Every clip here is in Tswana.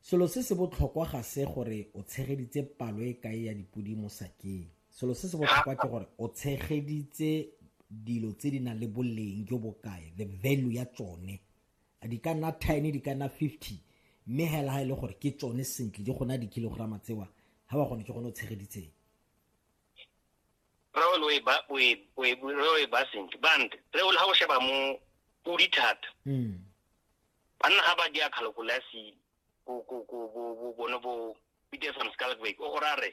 Selo se se botlhokwa ga se gore o tshegeditse palo e kae ya dipodi mo sakeng. Selo se se botlhokwa ke gore o tshegeditse dilo tse di nang le boleng jo bo kae, the value ya tsone. Di ka nna ten, di ka nna fifty, mme hela ha e le gore ke tsone sentle di gona dikilograma tsewa ha ba gone ke gone o tshegeditseng reol o e ba o e o e o e ba sentle band reol ha o sheba mo pudi thata mm. banna ga ba di a kgalokolasi bone bo peter van scalkweg o gore a re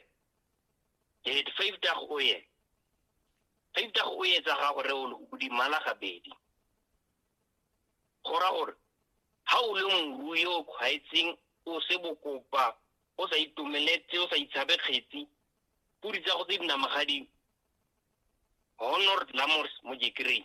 ke five tag o ye five tag o ye tsa gago re o di mala gabedi go ra gore ga o le moru yo o kgwaetseng o se bokopa o sa itumeletse o sa itshabe kgetsi pudi tsa go tse dinamagadi honor lamors mo jekereng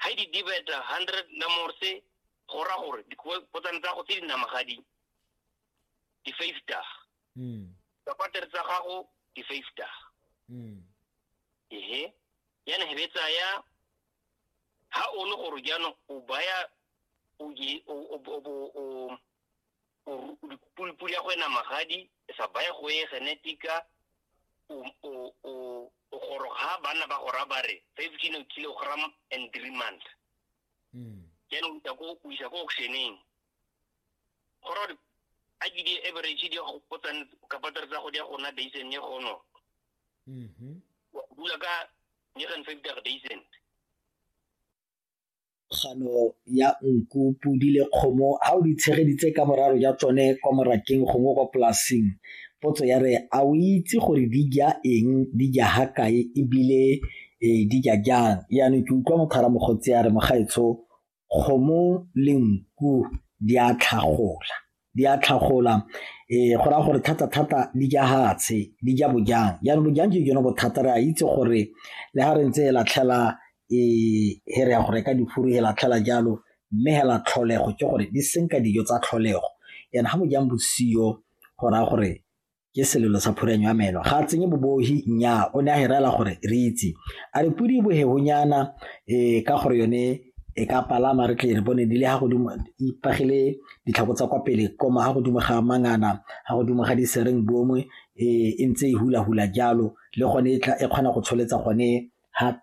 ga e di diveta hundred namorse go ra gore dikopotsane tsa go tse di namagadi di fafta hmm. kapatere tsa gago di fafta hmm. ehe yana he be tsaya ha o le gore jaanong o baya o pulipuli ya go ena magadi e sa baye go e genetika o goroga bana ba gora ba re fifteen kilogram and three months hmm. jaanong o isa ko auctioneng gore a ke di average di go potsang ka patare tsa go di gona basin ye gono mm-hmm. bula ka negen fifty days kgano ya nku podi le kgomo ga o di tshegeditse ka moraro ja tsone kwa morakeng gongwe kwa polasing potso ya re a o itse gore di ja eng di ja ga kae ebile um di ja jang yaanong ke utlwa mothara mogotsi ya re mogaetsho kgomo le nku di a tlhagola di a tlhagola um go raya gore thata-thata di ja hatshe di ja bojang jaanong bojang ke jone bothata re a itse gore le ga re ntse e latlhela um he re ya go reka difuru he latlhela jalo mme hela tlholego ke gore di senka dijo tsa tlholego yana ga mojang bosio go raya gore ke selelo sa phurenyo ya meno ga a tsenye bobohi nnyaa o ne a heraela gore re itse a re pudi bohehonyana um ka gore yone e ka palama re tle re bone di le ga godimo ipagile ditlhako tsa kwa pele koma ga godimo ga mangana ga godimo ga disereng boomwe um e ntse e hula-hula jalo le gone e, e kgona go tsholetsa gone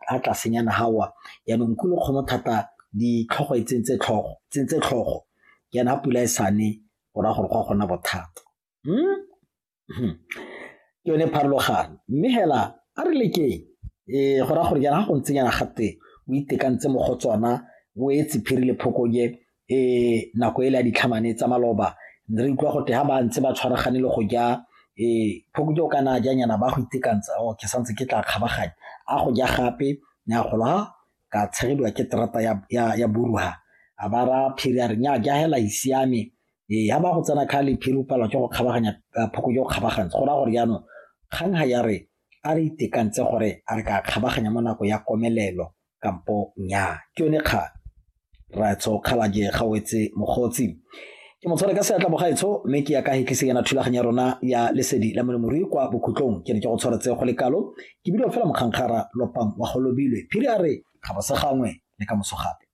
ga tlasenyana gawa yaanong kulo kgomo thata ditlhogo e tsentse tlhogo tsentse tlhogo yana pula e sane go raya gore go a gona bothata hmm? Hmm. ke yone pharologano mme hela a re lekeng ee go raya gore jaana ga go ntse nyana gate o itekantse mo go tsona o e tshiphiri le phokoke um nako e le ya ditlhamane tsa maloba re utlwa go te ga ba ntse ba tshwaragane le go ja um phokoke o kana janyana ba go itekantsa o oh, ke santse ke tla kgabaganya a go ja gape ne a golo ha ka tshegediwa ke terata ya boruha a ba ra phiri a re nya ja hela e siame ee ya ba go tsena khaliphe o palwa ke go kgabaganya phoko jo kgabagantse go raya gore jaanong kgang ga ya re a re itekantse gore a re ka kgabaganya mo nako ya komelelo kampo nya ke yone kgang ratso kgalage ga wetse mogotsi ke mo tshware ka seatla bogaetsho mme ke ya ka hetlise yana thulaganyo ya rona ya lesedi la molemorui kwa bokhutlong ke ne ke go tshwaretse go le kalo ke bile fela mokgankgara lopang wa golobilwe phiri a re kgabose gangwe le ka moso gape